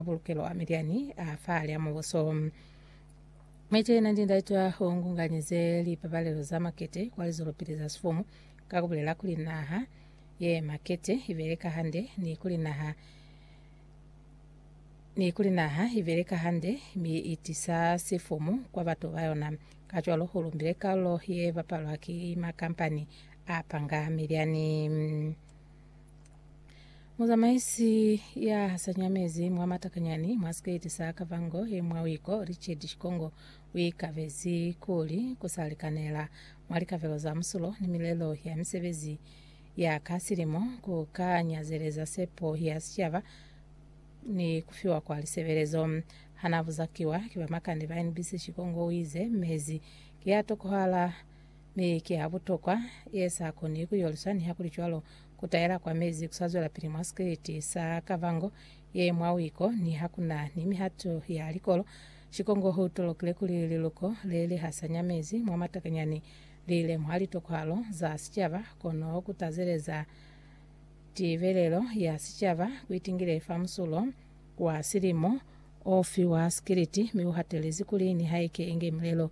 Mabulukelo a Midiani a fa lya mubuso. Mwece yena ndi ndaitwa o ngunganyize lipabalelo za makete kwa lizolopili za sifumu ka kubulela kuli naha ye makete ibeleka hande ni kuli naha ni kuli naha ibeleka hande mi itisa sifumu kwa batu ba yona. Kacwalo u lumbile kalulo ye bapalwa ki makampani a panga Midiani. Muzamaisi ya hasanyamezi mwa matakanyani mwa siketi sa Kavango ye mwa Wiko, Richard Shikongo, uikabezi kuli kusalikanela mwa likavelo za musulo ni milelo ya misebezi ya ka silimo ku ka nyazeleza sepo ya sicaba ni kufiwa kwa lisebelezo. Hanabuzakiwa ki bamakande ba NBC, Shikongo uize, Mezi ki a tokohala, Mi ki ha butokwa, ye sa koni ku yoliswa, nihakulicwalo, ku taela kwa mezi ku sa zwelapili mwa sikriti sa kavango ye mwa wiko. Ni ha ku na ni mihato ya likolo, Shikongo u tolokile kuli liluko le li hasanya mezi mwa matakanyani li lemuha litokwahalo za sicaba, kono ku tazeleza tibelelo ya sicaba ku itingile fa musulo wa silimo o fi wa sikriti, mi u hatelezi kuli nihaike inge milelo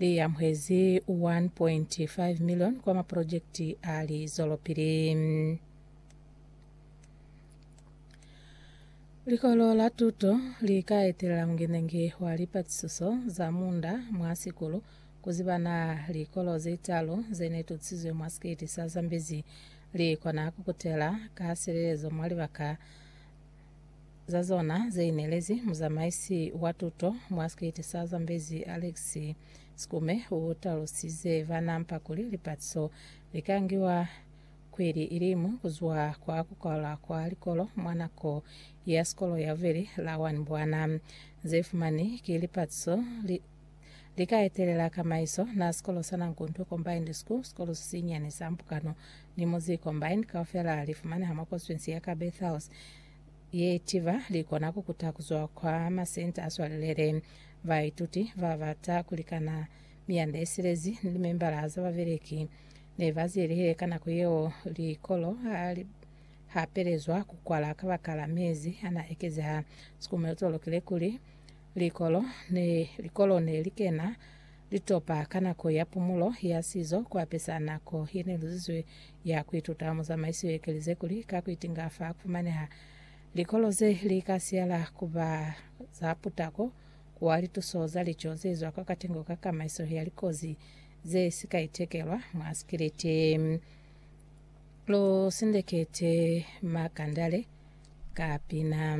Li amuhezi 1.5 million kwa maprojekiti a lizwelopili. Likolo la tuto li ka etelela mungenangi wa lipatisiso za munda mwa sikulu ku ziba na likolo ze talu ze ne tutisizwe mwa sikiti sa Zambezi li kona ku kutela ka silelezo mwa libaka za zona ze inelezi muzamaisi wa tuto mwa sikiti sa Zambezi Alex Sikume u talusize bana mpa kuli lipatiso li ka ngiwa kweli ilimu kuzwa kwa kukwala kwa likolo mwa nako ya sikolo ya bubeli la 1 bwana ze fumani ki lipatiso li Li ka etelela kamaiso na sikolo sa Nankuntu Combined School, sikolo sisinyani sa Mpukano ni Muzi Combined kaufela li fumaneha mwa konstituensi ya Kabethals ye itiba li kona ku kuta ku zwa kwa masenta a swalelele baituti ba bata ku likana miyanda ye silezi ni limembala za babeleki ne ba zielehile ka nako yeo likolo ha li hapelezwa ku kwala kabakala mezi a na ekezeha. Sikumelo to lokile kuli Likolo ne likolo ne li kena litopa ka nako ya pumulo ya sizo ku apesa nako ye ne luzizwe ya ku ituta mwa zamaiso ye kelize kuli ka ku itinga fa ku fumaneha likolo ze li ka siyala ku ba za putako kwa lituso za lico ze zwa kwa katengo ka kamaiso ya likozi ze si ka itekelwa mwa sikiliti. Lu sindekete makandale ka pina.